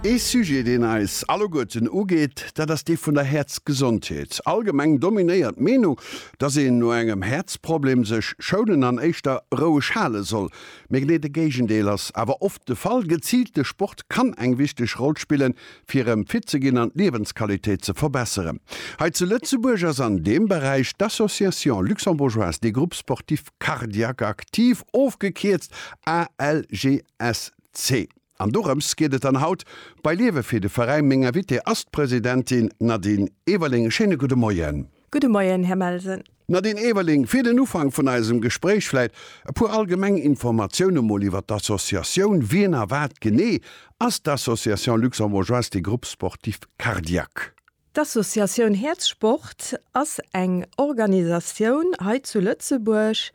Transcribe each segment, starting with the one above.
Ee Sujet, deen eis alleguerten ugeet, dat ass dee vun der Häerzgesondheet. Allgemeng dominéiert d'Meenung, dass een no engem Häerzproblem sech schounen an éischter roueg hale soll. Mee genee de Géigendeel ass awer oft de Fall. Geziilte Sport kann eng wichteg Roll spillen, fir erëm fit ze ginn an d'Liewensqualitéit ze verbesseren. Hei zu Lëtzebuerg ass an deem Beräich d'Association Luxembourgeoise des Groupes Sportifs Cardiaques Actifs, ofgekierzt ALGA, SC. An dorëms geet et dann haut bei Liewe fir de Veräin. Meng Invitée ass d'Presidentin Nadine Everling. E schéine gudde Moien. Gudde Moien, Här Melsen. Nadine Everling, fir den Ufank vun eisem Gespréich vläit e puer allgemeng Informatioune mol iwwer d'Associatioun. Wien a wat genee ass d'Association Luxembourgeoise des Groupes Sportifs Cardiaques? D'Associatioun Häerzsport ass eng Organisatioun hei zu Lëtzebuerg,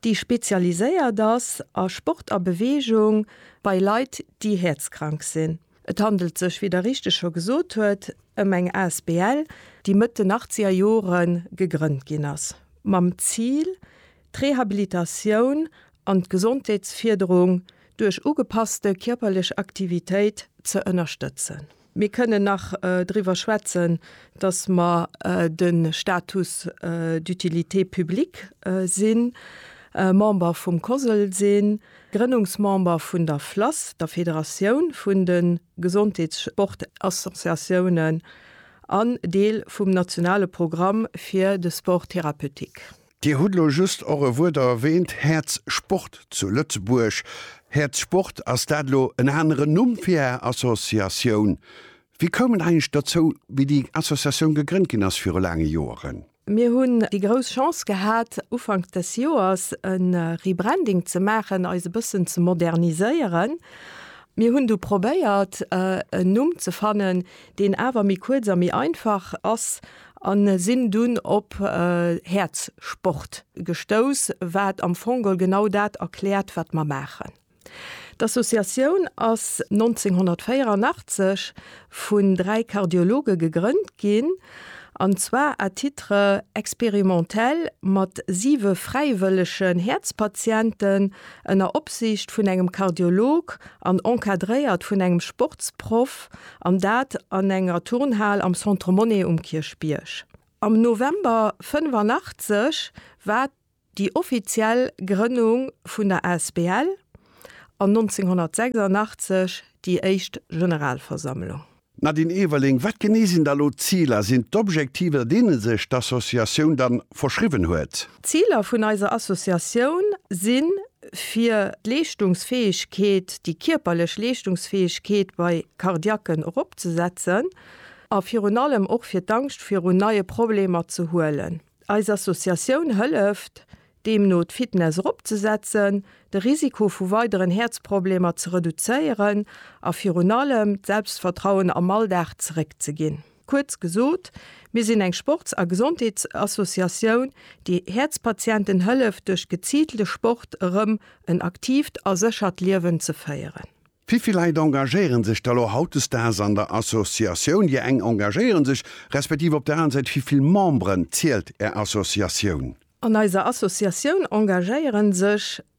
déi spezialiséiert ass a Sport a Beweegung bei Leit, déi häerzkrank sinn. Et handelt sech, wéi Der richteg scho gesot huet, ëm eng asbl, déi Mëtt den achtzeger Jore gegrënnt ginn ass, mam Zil, d'Rehabilitatioun an d'Gesondheetsfierderung duerch ugepasste kierperlech Aktivitéit ze ënnerstëtzen. Mir kënnen nach driwwer schwätzen, dass mer de Status d'utilité publique sinn, Member vum COSL sinn, Grënnungsmember vun der FLASS, der Federatioun vun de Gesondheetssportassociatiounen, an Deel vum nationale Programm fir de Sport thérapeutique. Dir hutt elo just och e Wuert erwähnt, Häerz Sport zu Lëtzebuerg. Häerz Sport, ass dat elo en aneren Numm fir Är Associatioun? Wie koum et eigentlech dozou, wéi déi Associatioun gegrënnt ginn ass viru laange Joeren? Mir hunn déi grouss Chance gehat, Ufank des Joers e Rebranding ze maachen, eis e bëssen ze moderniséieren. Mir hunn du probéiert, en Numm ze fannen, deen awer méi kuerz a méi einfach ass a sinn dunn op Häerzsport gestouss, wat am Fongol genau dat erkläert, wat mer maachen. D'Associatioun ass 1984 vun dräi Kardiologe gegrënnt ginn, an zwar à titre expérimentel mat siwe fräiwëllegen Häerzpatienten, ënner Opsiicht vun engem Kardiolog an encadréiert vun engem Sportsproff, an dat an enger Turnhal am Centre Monnet um Kierchbierg. Am November 85 war déi offiziell Grënnung vun der Asbl an 1986 déi éischt Generalversammlung. D'Nadine Everling, Wat genee sinn da elo d'Ziler? Sinn d'Objektiver, deene sech d'Associatioun da verschriwwen huet? D'Ziler vun eiser Associatioun sinn, fir d'Leeschtungsfäegkeet, déi kierperlech Leeschtungsfäegkeet bei Cardiaquen eropzesetzen a virun allem och fir d'Angscht virun neie Problemer ze huelen. Eis Associatioun hëlleft deemno d'Fitness eropzesetzen, de Risiko vu weideren Häerzproblemer ze reduzéieren a virun allem d'Selbstvertrauen am Alldag zeréckzeginn. Kuerz gesot, mir sinn eng Sports a Gesondheetsassociatioun, déi Häerzpatienten hëlleft duerch geziilte Sport erëm en aktiivt a séchert Liewen ze féieren. Wéivill Leit engagéiere sech da lo hautdesdaags an der Associatioun? Dir eng engagéiere sech, respektiv op der aner Säit, wéivill Memberen zielt Är Associatioun? An eiser Associatioun engagéiere sech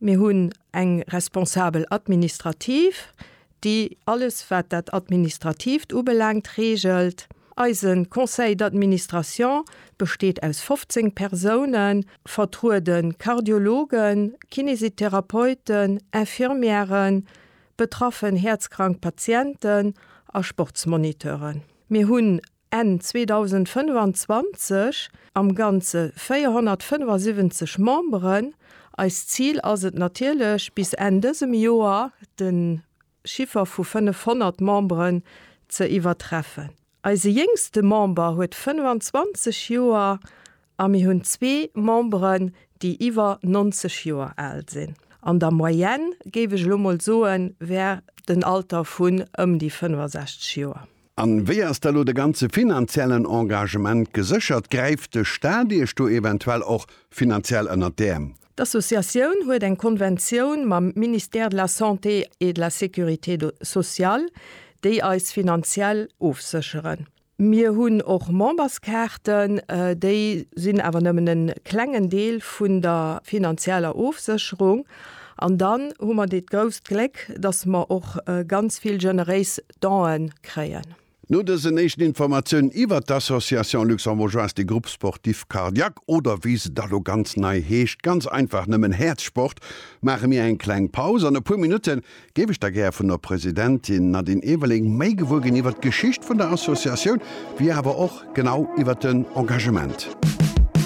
Mir hunn eng Responsabel administrative, déi alles wat dat Administrativt ubelaangt reegelt. Eise Conseil d'administration besteet aus 15 Persounen, vertruede Kardiologen, Kinesitherapeuten, Infirmièren, betraffen häerzkrank Patienten a Sportsmoniteuren. Mir hunn Enn 2025 am Ganze 475 Memberen. Eist Zil ass et natierlech, bis Enn dësem Joer de Chiffer vu 500 Memberen ze iwwertreffen. Eise jéngste Member huet 25 Joer a mir hunn zwee Memberen, déi iwwer 90 Joer al sinn. An der Moyenne, géif ech elo mol soen, wär den Alter vun ëm déi 65 Joer. An wéi ass da lo de ganze finanziellen Engagement geséchert? Gräift de Staat iech do eventuell och finanziell ënnert d'Äerm? D'Associatioun huet eng Konventioun mam Ministère de la Santé et de la Sécurité sociale, déi eis finanziell ofsécheren. Mir hunn och Memberskaarten, déi sinn awer nëmmen e klengen Deel vun der finanzieller Ofsécherung. An dann hu mer dat grousst Gléck, dass mer och ganz vill generéis Done kréien. No dësen éischten Informatiounen iwwert d'Association Luxembourgeoise des Groupes Sportifs Cardiaques, oder wéi se da lo ganz nei heescht, ganz einfach nëmmen Häerzsport, maache mir eng kleng Paus. An e puer Minutte géif ech da gär vun der Presidentin Nadine Everling méi gewuer ginn iwwert d'Geschicht vun der Associatioun, wéi awer och genau iwwert den Engagement.